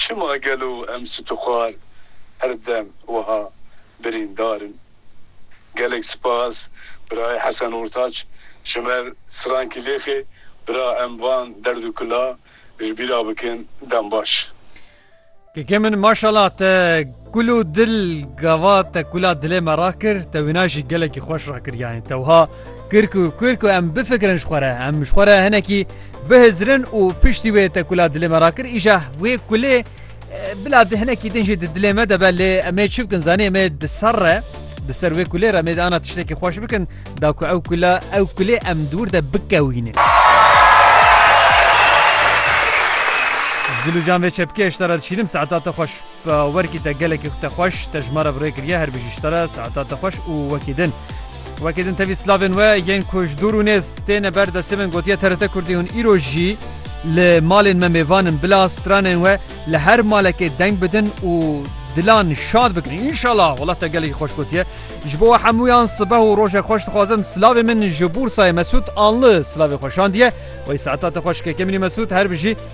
Çima gelo em situxwar her dem wiha birîndar in? Gelek spas birayê Hesen Ortaç ji ber strankî lêxê bira em van derd û kila ji bîra bikin dem baş. Keke min maşallah te Kul û dil gava te kula dilê me rakir te wina jî gelekî xweş rakir yanî tewha kir ku kir ku em bifikirin ji xwe re em ji xwe re hinekî bihizirin û piştî wê te kula dilê me rakir îja wê kulê bila di hinekî din jî di dilê me de be lê em ê çi bikin zanî em ê di ser re di ser wê kulê re em ê ana tiştekî xweş bikin da ku ew kula ew kulê em dûr de bikewîne. Dilûcan vê çepkê ji te re dişînim saeta te xweş. Bi awerkî te gelekî xu te xweş, te ji ma re bi rê kiriye her bijî ji te re saeta te xweş û wekî din. Wekî din tevî slavên we yên ku ji dûr û nêz têne ber destê min gotiye TRT Kurdî hûn îro jî li malên me mêvan in bila stranên we li her malekê deng bidin û dilan şad bikin înşallah wela te gelekî xweş gotiye ji bo we hemûyan sibeh û rojek xweş dixwazim silavê min ji Bûrsayê Mesûd anli silavê xwe şandiye wey saeta te xweş kekemînî Mesûd her bijî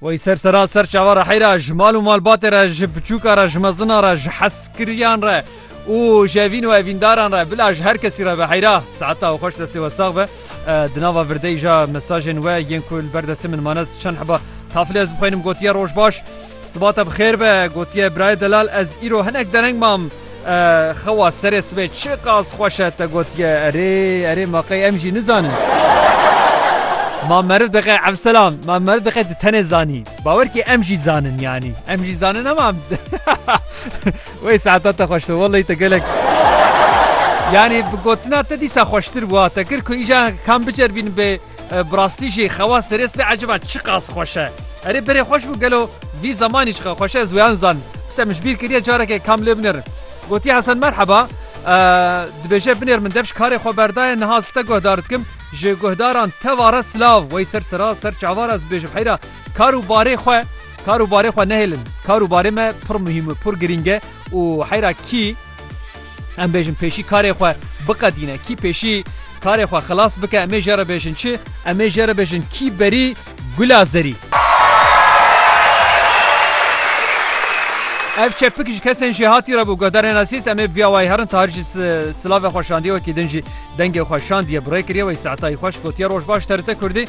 Wey ser sera ser çava re heyra ji mal û malbatê re ji biçûka re ji mezina re ji heskiriyan re û ji evîn û evîndaran re bila ji her kesî re be heyra saeta û xweş destê we sax be di nava virdeyî ja mesajên we yên ku li ber destê min mane çend heba tafilê ez bixwînim gotiye roj baş Siba te bi xêr be, gotiye birayê delal ez îro hinek dereng mam xewa serê sibê çi qas xweş e te gotiye erê erê ma qey em jî nizanin. Ma meriv diqe evselam ma meriv diqe di tenê zanî bawer kê em jî zanin yanî em jî zanin hema wey saeta te xweş be welleyî te gelek yanî bi gotina te dîsa xweştir bû te kir ku îja kam biceribînin bê Bi rastî jî xewa serê sibê eciba çiqas xweş e. Erê berê xweş bû gelo vî zemanî çiqas xweş e ez wê an zan. Pise min ji bîr kiriye careke kam lê binêrin. Gotiye Hesen merheba dibêje binêr min dev ji karê xwe berdaye niha ez te guhdar dikim ji guhdaran teva re silav wey ser sira ser çava re ez bibêjim heyra kar û barê xwe kar û barê xwe nehêlin kar û barê me pir muhîm pir girîng e û heyra kî Em bêjin pêşî karê xwe biqedîne, kî pêşî karê xwe xilas bike em ê jê re bêjin çi? Em ê jê re bêjin kî berî gula zerî. Ev çepik ji kesên jêhatî re bû guhdarên Asîs em ê bi vîya wayî herin Tahir jî silavê xwe şandiye wekî din jî dengê xwe şandiye bi rê kiriye wê saetayî xweş gotiye roj baş TRT Kurdî.